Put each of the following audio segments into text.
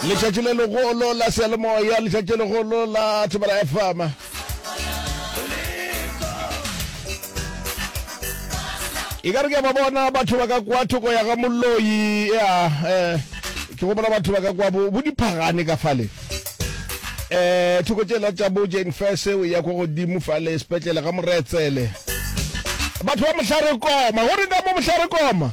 letšatši le legolo la seyalemoya letšatši legolo la thobela fm e ka re ke ba bona batho ba ka kwa thoko ya ga moloi ya um ke gopola batho ba ka kwa bo bo diphagane ka fale um thoko tšela tša bo jane fes o ya kwa godimo fale sepetlele ga moretsele batho ba mohlare koma go re ka mo mohlare koma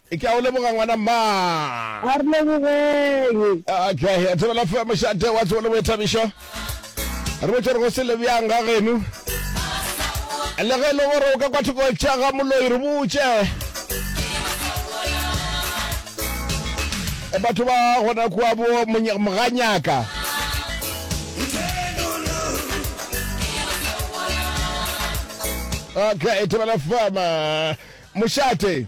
Ke a o leboga ngwana mma. A re lebogeng. Okay, a thobela fe mošate wa tsebo le boithabišo. Re botse gore go se le bjang ga geno. Le ge e le gore o ka kwa thoko tša ga moloi re botse. E batho ba gona kwa bo Monya- moganyaka. Okay, thobela fama. Mošate.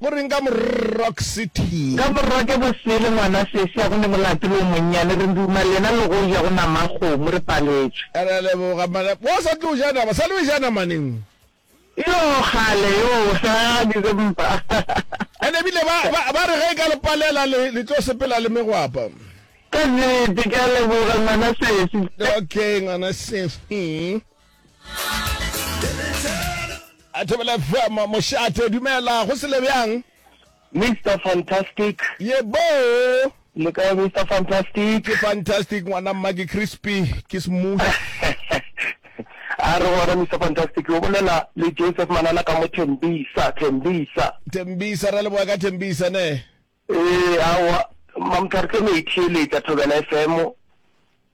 Go reng ka Morock City? Ka Morock e bosele ngwana Sesia go ne molato le o monnyane re nduma lena le go ja go nama a kgomo re paletšwe. Re a leboga mara wa sa tlo ja nama sa lo ja nama neng? Yoo kgale yoo ha December. And ebile ba ba re ge e ka le palela le le tlo sepela le megwapa. Ka nnete ke a leboga ngwana Sefi. Okay ngwana Sefi. a thobela fm mošate dumela go sele bjang mr fantastic ye boo le ka mr fantastic ke fantastic ngwana mma ke crispy ke smooth a re gona mr fantastic o bolela le joseph manana ka mo thembisa thembisa thembisa ra leboga ka thembisa ne Ee, aowa, Mamthwarse e no e theeletša Thobela FM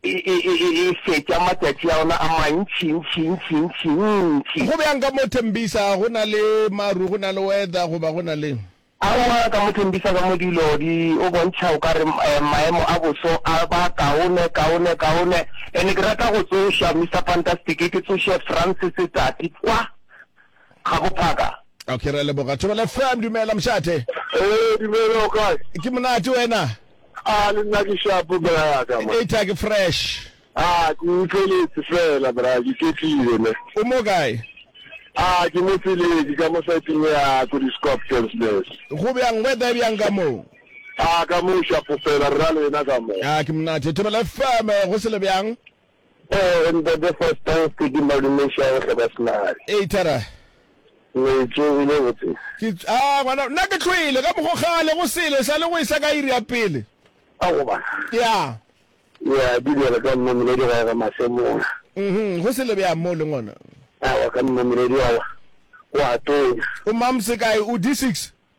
e, e, e, e, e fetša matšatši a ona a mantši, ntši, ntši, ntši, ntši. Go bjang ka mo Tembisa? Go na le maru, go na le weather, goba go na le? Aowa, ka mo Tembisa ka mo dilo di o bontšha o ka re um maemo a boso a ba kaone, kaone, kaone. And ke rata go tsoša, Mister Fantastic, ke tsoše Francis Tsatsi kwa, ga go phaka. Okay, re a leboga. Thobela FM, dumela mošate. Ee, dumela o kae? Ke monate wena? A le nna ke shapo bra ya ka ma. Eta ke fresh. A ke utlweletse fela bra ke ketlile ne. O mo kae? A ke mo tseleng ke ka mo saiteng ya ko di Scorpions nurse. Go bjang weather e bjang ka moo? A ka mo shapo fela rra lena ka mo. A ke monate. Thobela FM go se le bjang? Oh in the the first time speaking malume ša go hloka senare. Ee Thara. Metso e le botse. Ke ah ngwana nna ke tlhoile ka mogo kgale go sele sa le go isa ka iri ya pele. A go ba. Ya. Ya di le ka mma mele di ga ga masemona. Mhm go sele bya mo le ngwana. A wa ka mma mele di wa. Wa tonya. O mamse kae o D6?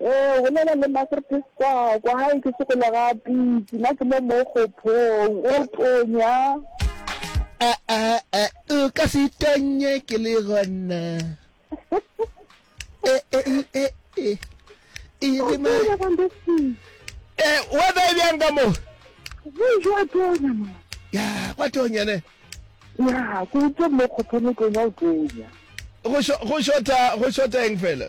Ee, bolela le Magrtes kwa, kwa gae ke sokola ga pitsi, na ke mo mo kgophong, o tonya. A, a, a, o ka se tonye ke le gona. E, e, e, e, e. E re ma. E, weather e bjang ka mo? Bonjour, tonya ma. Ya, kwa tonya ne. Ya, ke utse mo kgophong o tonya, o tonya. Go shota, go shota eng fela?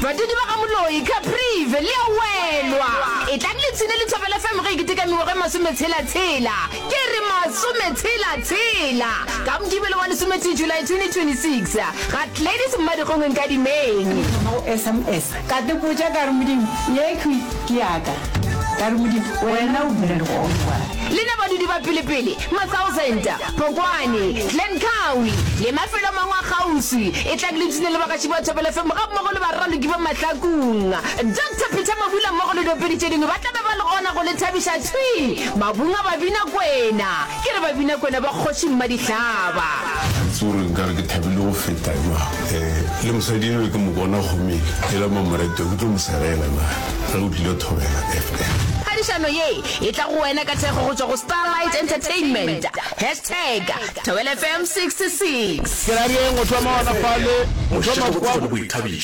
Badudi ba ga Moloi, Caprive, le a welwa. Etlang le tshine Lethabo la FM ge e keteka mengwaga e masometshela-tshela. Ke re masometshela-tshela! Ka Mokibelo wa lesometee July 2026, ga Gladys Mmadikgongwe Nkadimeng. Ke thoma go sms ka te botša ka re Modimo ye khwi ke ya ka. Ka re Modimo wena o dula le gona. Le na badudi ba pelepele, matsaosenta, Phokwane, Glencoe le mafelo a mangwe a kgauswi, e tlang le dutse le bagatši ba Thobela FM gammogo le baraloki ba Mahlakong. Doctor Peter Mabula mmogo le diopedi tše dingwe ba tla be ba le gona go le thabiša. Thwi! Mabung a Babinakwena! Ke re Babinakwena ba Kgoši Mmadihlaba! Ga ke tsebe gore nka re ke thabile go feta jwang. Le mosadi enwa ke mo bona kgomeng ela Mamoretwa, ke tlo mo sereela na ge o tlile Thobela FM. Phadišano ye E tla go wena ka thekgo go tšwa go Starlight Entertainment. Hashtag Thobela FM 66. Ke ra re'ng o thoma ona fale, o thoma kwa,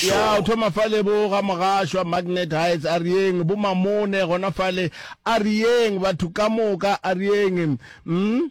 ya o thoma fale bo ga Mogashwa, Magnet Heights, a re'ng bo Mamone gona fale, a re'ng batho ka moka, a re'ng, mm.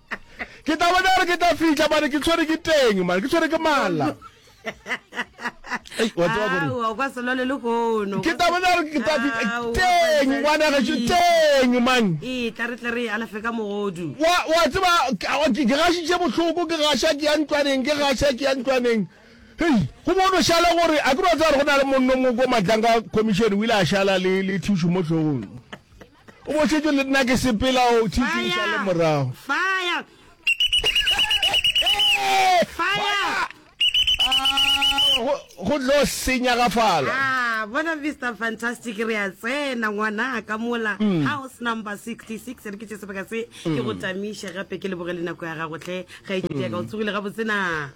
ke tla bona gore ke tla fitlha mane ke tshwere ke teng mane ke tshwere ke mala ke tla bona gore ke tla fitlha teng ngwana gaso teng mang wa tseba ke gašitše bohloko ke gaša ke ya ntlwaneng ke gaša ke ya ntlwaneng hei go bono šale gore a ke ba tsa gore go na le monno moko matlanga commission o ile a šala le thušo mo tlhogong O bošetšwe le nna ke sepela o tšhitšiša le morago. Fire! Fire! go tlo senya ga fala ah, bona mr fantastic re a tsena ngwana ka mola mm. house number 66 re ke tse sebaka se ke go mm. tamiše gape ke lebogele nako ya gagotlhe ga e tšetea ka o mm. tsogile ga botsena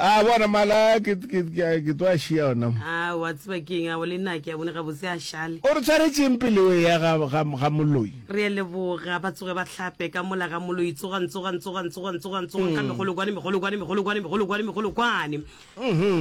A bona mala a, ke, ke, ke, ke tlo a šia ona mo. A, o a tseba ke eng, a o le na, ke a bone gabotse a šale. O re tshwaretšeng pele o eya ga, ga, ga Moloi? Re a leboga. Ba tsoge ba hlape ka mola ga Moloi. Tsogang, tsogang, tsogang, tsogang, tsogang, tsogang ka megolokwane, megolokwane, megolokwane, megolokwane, megolokwane.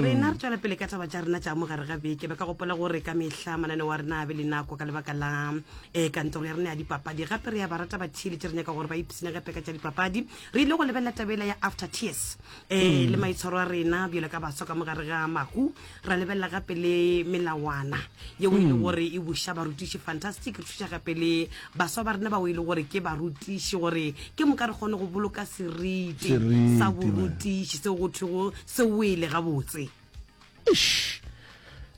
Rena re tšwela pele ka taba tša rena tša mo gare ga beke. Ba ka gopola gore ka mehla mananeo a rena a be le nako ka lebaka la eh, kantoro ya rena ya dipapadi. Gape re a ba rata batheeletši, re nyaka gore ba ipshinegepe ka tša dipapadi. Re ile go lebelela taba yela ya After Tears. um le maitshwaro a rena bjale ka baswa ka mogare ga mahu ra lebelela gape le melawana yeo e le gore e buša barutiši fantastic re thuša gape le baswa ba rena bao e le gore ke barutiši gore ke moka re kgone go boloka seriti Seriti, sa man. borutiši seo go thwego se wele gabotse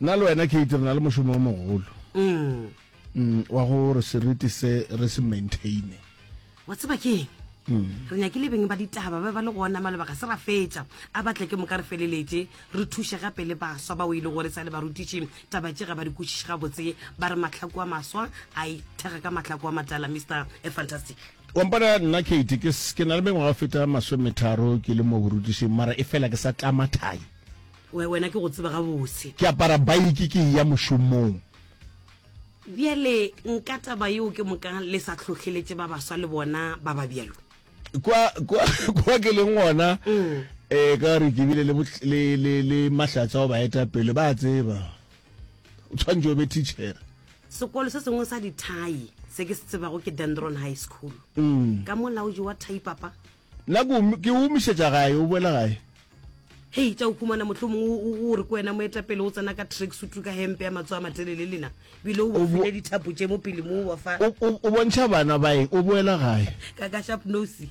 nna le wena kate re na le mošomo o mogolo mm, wa gore seriti se re se maintaine wa tseba ke eng mm. re nyakile beng ba ditaba ba ba le gona maloba ga se ra fetša a batle ke moka re feleletse re thuše gape le baswa ba o e le gore sa le barutiši taba tše ga ba di kwešiše gabotse ba re matlhako a maswa a ithega ka matlhako a matala mr a fantastic wampana nna kate ke na le mengwaga feta masometharo ke le mo borutišing mara e fela ke sa tlama thai wena ke go tseba gabotse ke apara baiki ke ya mošomong Bjale nka taba yeo ke moka le sa hlohleletše ba baswa le bona ba ba bjalo. Kwa, kwa, kwa ke leng gona mm. e ka gore ke bile le, le, le, le mahlatsa go baeta pele ba tseba o tshwanetse o be teacher sekolo se sengwe sa dithai se ke se tsebago ke dendron high school mm. ka molaodi wa thai papa Nna ke o- ke o omišetša gae, o boela gae. Hei, tša o humana, mohlomong o- o o re ko wena moetapele o tsena ka tracksuit ka hempe ya matso a matelele, lena bile o O bo- bafile dithapo tše mo pele mo, wa fa O, o, o bontšha bana ba eng? O boela gae. ka, ka sharp nose.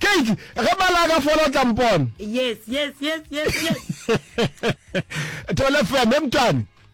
Keiti, ge mala a ka fola o tla mpona. Yes, yes, yes, yes, yes. Thole feme, mtwane.